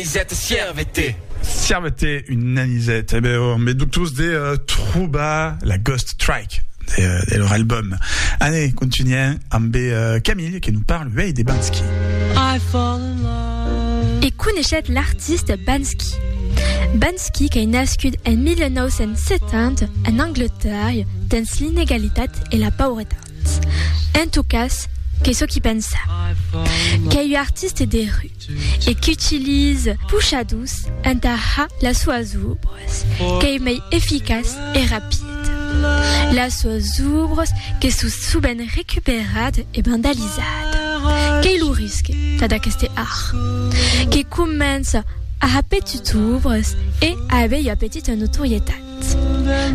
Anisèt, sierve-te! Sierve-te una anisèt! E ben, me doctors de trobar la Ghost Track de lor album. Ane, contunhèm ambe Camille que nos parle uèi de Bansky. I fall in love. E coneishèt l'artiste Bansky. Bansky qu'ei nascut en 1970 en Angleterre dens l'inegalitat e la pauretat. En tot cas, qu'ei çò qui pensa. Qu'ei ua artiste de rue. e qu'utilise pochadus entà har las soas obras qu'ei mei eficaç e rapid, las soas obras que sò subent recuperat e vandalizat. Qu'ei lo risque tad aqueste har, que comença a ha petits obras e a avei ua petita notorietat.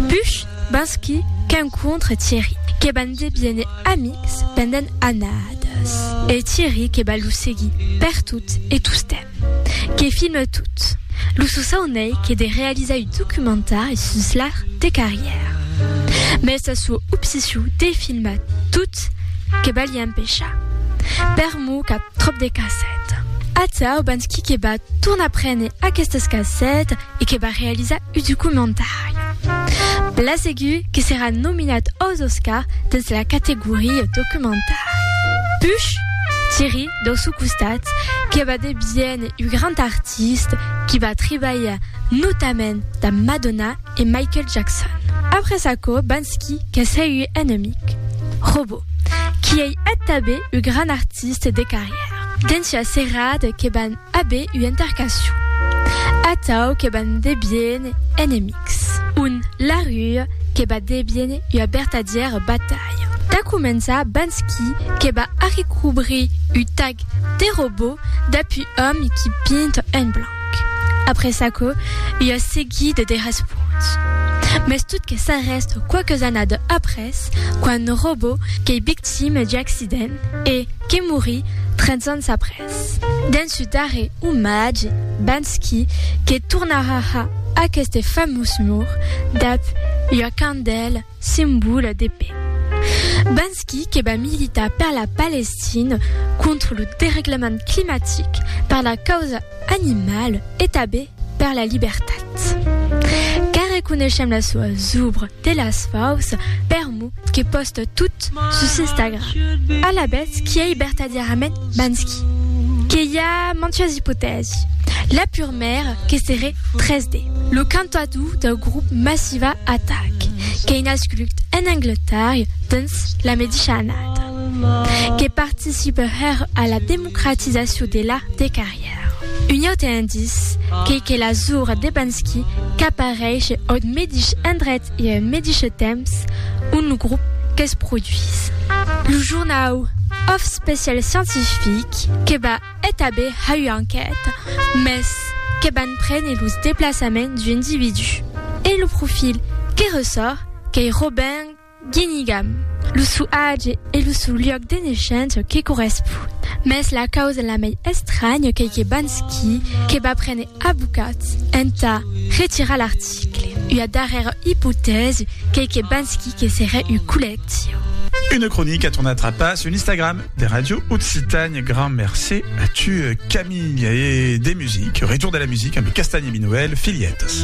Push, Bansky, qu'encontre Thierry, que van deviene amics pendent annadas, e Thierry que va lo seguir pertot e tostemp, que filme tot. Lo sosau n'ei que de realizar un documentari sus l'art de carrièr. Mès sa sua obsession de filmar tot que va li empechar. Per mor qu'a tròp de cassètas. Atau, Bansky que va tornar prene aquestas cassètas, e que va realizar un documentari. Bla segur que serà nominat aus Oscar dens la categoria documentari. Puch, Thierry, dau sò costat, que va deviéner un grand artista qui va tribalhar notament damb Madonna e Michael Jackson. Après aquò, Banksy, qu'es hèi un enemic. Robo, qui ei eth tanben un grand artista de carrièra. Dens ua serada que van. Abe ua intercacion. Atau que ban debien enemics. Un larrue que ba debien ua bertadièra batalha. Tà començar bans qui que ba arrecobrir u tag de robot d'apu òm qui pint en blanc. Après çaquò, ua seguida de responts. Mès tot que s'arrèst quauques annada après, quand robot qu'ei victime d'u accident e que morí 30 ans après. Dens su darrè omatge, Banksy, que tornarà a aqueste famós mur, dab ua candèla, simbòla de paix. Banksy que va militar per la Palestina, contra lo dereglament climatic, per la causa animala, e tabé per la libertat car reconeishem las soas obres de las faus per mo que posta tot sus Instagram alabèth qui ei bertadièrament Banksy que i a mantuas ipotèsi la purmèra que seré 3D lo cantador dau grop Massiva Attack qu'ei nascut en Angletarria dens la medisha annada que participe hèr a la democratizacion de l'art de carrièr. Un aute indice qu'ei que la zura de Bansky qu'apareishe aut medish endret e en medishe temps ont lo grop que's produís. Lo jornau Of Special Scientific que va etabir ha ua enquèta, mès que van prene los deplaçaments d'u individú. E lo profil que ressòrt qu'ei Robin. Guinigam, lo sou age e lo sou luòc de neishença que correspon. Mès la causa la mei estranya qu'ei que Bansky que va prene abocats entà retirar l'article. Ua darrèra ipotèsi qu'ei que Bansky que serè un collectiu. Une cronica a tornat trapar sul Instagram de Radio Occitània. Grand mercé a tu, Camilh. E de music, retour de la music amb Castagni Minoel, Filhetas.